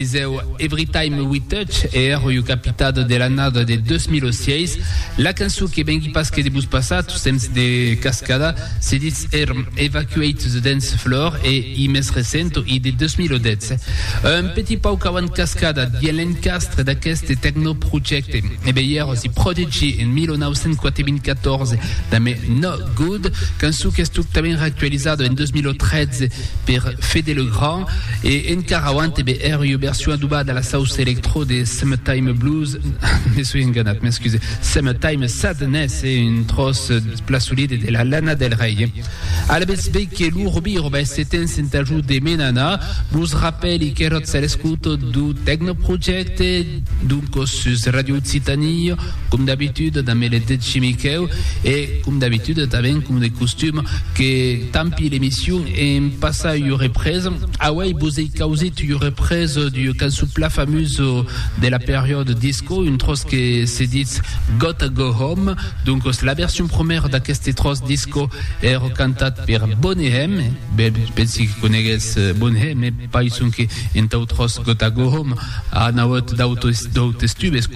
Deu Everytime We Touch e ero iu capitado de l'annada de 2006, la cançon que vengui pas que de vos passar tot temps de cascada se ditz erm Evacuate the Dance Floor e i mes recento i de 2010, un petit pauc avant cascada dins l'encastre d'aqueste techno projecte. E be i ero si Prodigy en 1994 damb No Good, cançon qu'es totament reactualizada en 2013 per Fede Le Grand. E encara auant e be èr ua version adobada a la sauça electro de Summertime Blues, me soi enganat, m'excusez, Summertime Sadness, e un tròç pla solide de la Lana Del Rey. Alavetz be que lo Robi roba es setens en t'ajut de Menana, vos rapèli qu'eròtz a l'escouta do Tecnoprojecte, doncos sus Radio Occitanie, Com d'abitude damb er deth Miquèu e com d'abitude tanben com de costum que tampi l'emission en passa ua represa, auei vos ei causit ua represa d'ua cançon pla famusa de la periòde disco, un tròç que se ditz Gotta Go Home, doncos la version prumèra d'aqueste tròç disco ère cantat per Boney M, ben pensi que conegues Boney M, pas sonque entau tròç Gotta Go Home, A nauèth d'autes tubes,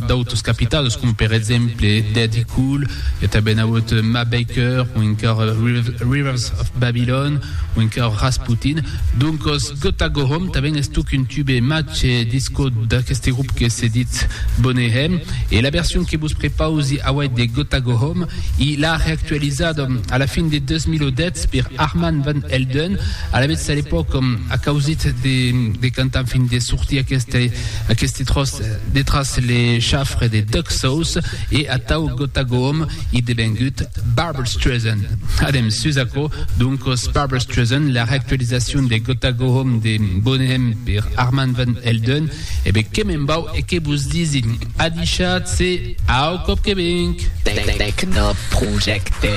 d'autes capitals, com per exemple Dead Cool, i a tanben nauèth Ma Baker, o encara Rivers of Babylon, o encara Rasputin. Doncos Gotta Go Home tanben es tuc un tube matge disco d'aqueste grup que se dit Boney M. E la version que vos prepausi auèi de Gotta Go Home, i l'a reactualizada a la fin de 2010 per Armand Van Helden, Alavetz, a l'epòc, a causit de cantar, fin de sortir aqueste tròç detràs le chafre de Duck Sauce e atau Gotagoom ei devengut Barbra Streisand. Adèm sus aquò, doncos, Barbra Streisand, la reactualizacion de Gotagoom de Boneham per Armand Van Helden. E be, que me'n vau e que vos disi adishatz-se au còp que venc! Tecnoprojecte.